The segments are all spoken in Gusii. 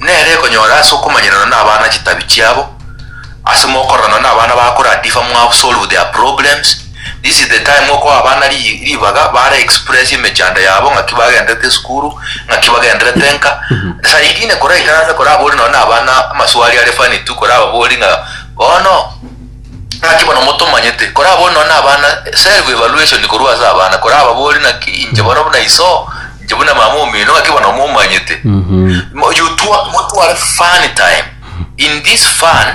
Nere ekonyora ase okomanyeranwa nabana chitabi chiabo ase mokororana nabana bakora differ mwao solve their problems this is the time okoa abana ri ribaga bare express emechando yabo ng'aki bagenderete esukuru ng'aki bagenderete nka saa ingine kora ikarase kora abori nonye na abana amaswali are funny tu kora ababori ng'a bono ng'aki bono motomanyete kora abori nonye na abana self evaluation korwa ase abana kora ababori naki inche bono buna iso inche buna mama omino ng'ake bono momanyete Mo- you twa- motware fun time in this fun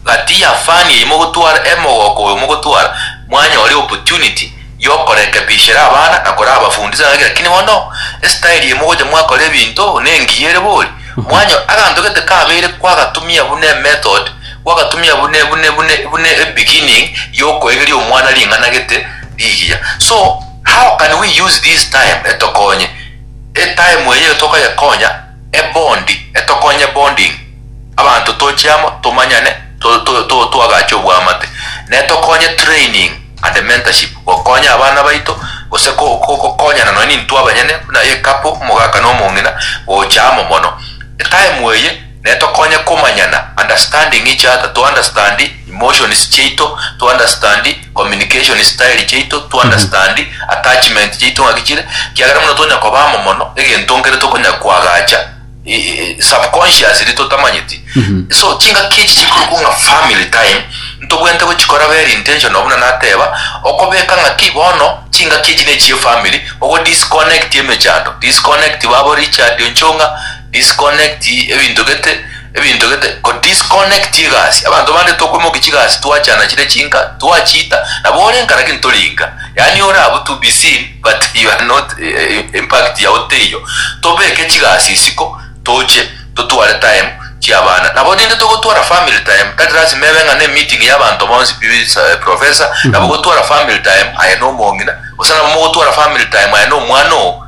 gati ya fun eyi mogotwara emogoko oyo mogotwara mwanyore opportunity yokorekebishera abana na korabafundisa ng'aki lakini bono estyle eye mogocha mwakora ebinto nengiya ere bori mwanyo aganto gete kabeire kwagatumia buna emethod kwagatumia bune bune bune bune ebeginning yokoegeria omwana ring'ana gete rigiya so How can we use this time etokonye etime eyio tokoyekonya ebondi etokonye bonding abanto toche amo tomanyane toagache obwamate netokonye training and mentorship gokonya abana baito gose gokonyana nonya nintwe abanyene buna ecouple omogaka nomong'ina gocha amo mono etime eye Netokonye komanyana, understanding each other, to understand emotions chiaito, to understand communication style chiaito, to understand attachment chiaito ng'aki chire, kiagera buna tonya koba amo mono, egento nkere tokonya koagacha e- e- subconsciously totamanyeti. So chingaki echi chikorokwa ng'a family time, ntobwenerete gochikora very intentional buna nateba, okobeka ng'aki bono chingaki echi nechie family, ogo disconnect emechando, disconnect babo Richard Onchong'a, Disconnect ebinto gete ebinto gete ko disconnect egasi abanto bande tokwemokia chigasi twachana chire chinka twachiita nabo ore nka lakini tori nka yaani ore abwo to be seen but you are not impact yao teiyo tobeke chigasi isiko toche totware time chiabana nabo rinde togotwara family time tari lasima ebe ng'a ne meeting ya abanto bonsi be is a professor nabo gotwara family time aye nomong'ina gose nabo mogotwara family time aye nomwana oo.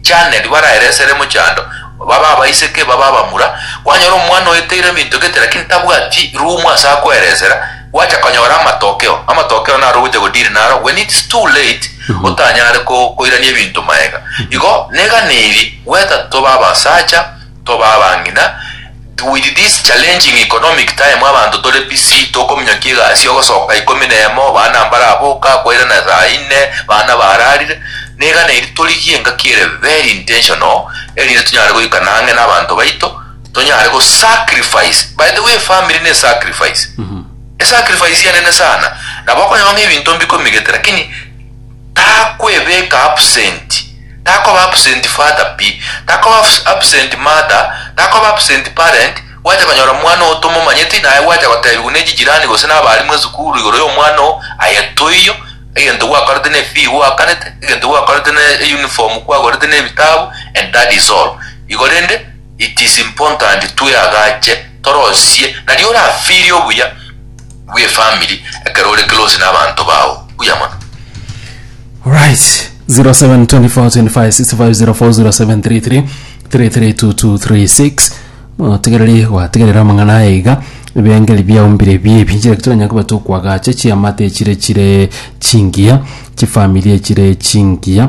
Janet, baraere esere mochando, babe abaiseke, babe abamura, kwanyora omwana oeteire ebinto gete lakini tabwati room ase akoeresera, gwacha konyora amatokeo, amatokeo naro ogocha go deal naro when it's too late, otanyare ko koirania ebinto maega. Igo, negane eri, gweta tobe abasacha, tobe abang'ina, with this challenging economic time abanto tore busy tokominyokia egasi ogosoka ikomi na emo bana mbaraboka koirana saa inne bana bararire, niga nairi torigie engaki ere very intentional erinde tonyare goikana ang'e nabanto baito tonyare go sacrifice, by the way family ne sacrifice, esacrifice enene sana nabo okonyora ng'a ebinto mbikominygete lakini. Takwebeka absent, takoba absent father pi, takoba absent mother, takoba absent parent, gwacha konyora omwana oo tomomanyeti naye gwacha gotebigwa ne chijirani gose na abalimu esukuru igoro y'omwana oo, aye toiyo, egento gwakorete ne fee gwakanete, egento gwakorete ne uniform kwagorete ne ebitabu and that is all. Igo rende it is important tweagache torosie nario orafirie obuya. bw'efamiri ekero ore close n'abanto bao. Buya mono. Alright. 07242565040733 332236 motegereri gwategerera amang'ana aya iga ebengeri biaumbire biebi njire kitoranya koba tokwagacha chiamate chire chire chingiya chifamiri chire chingiya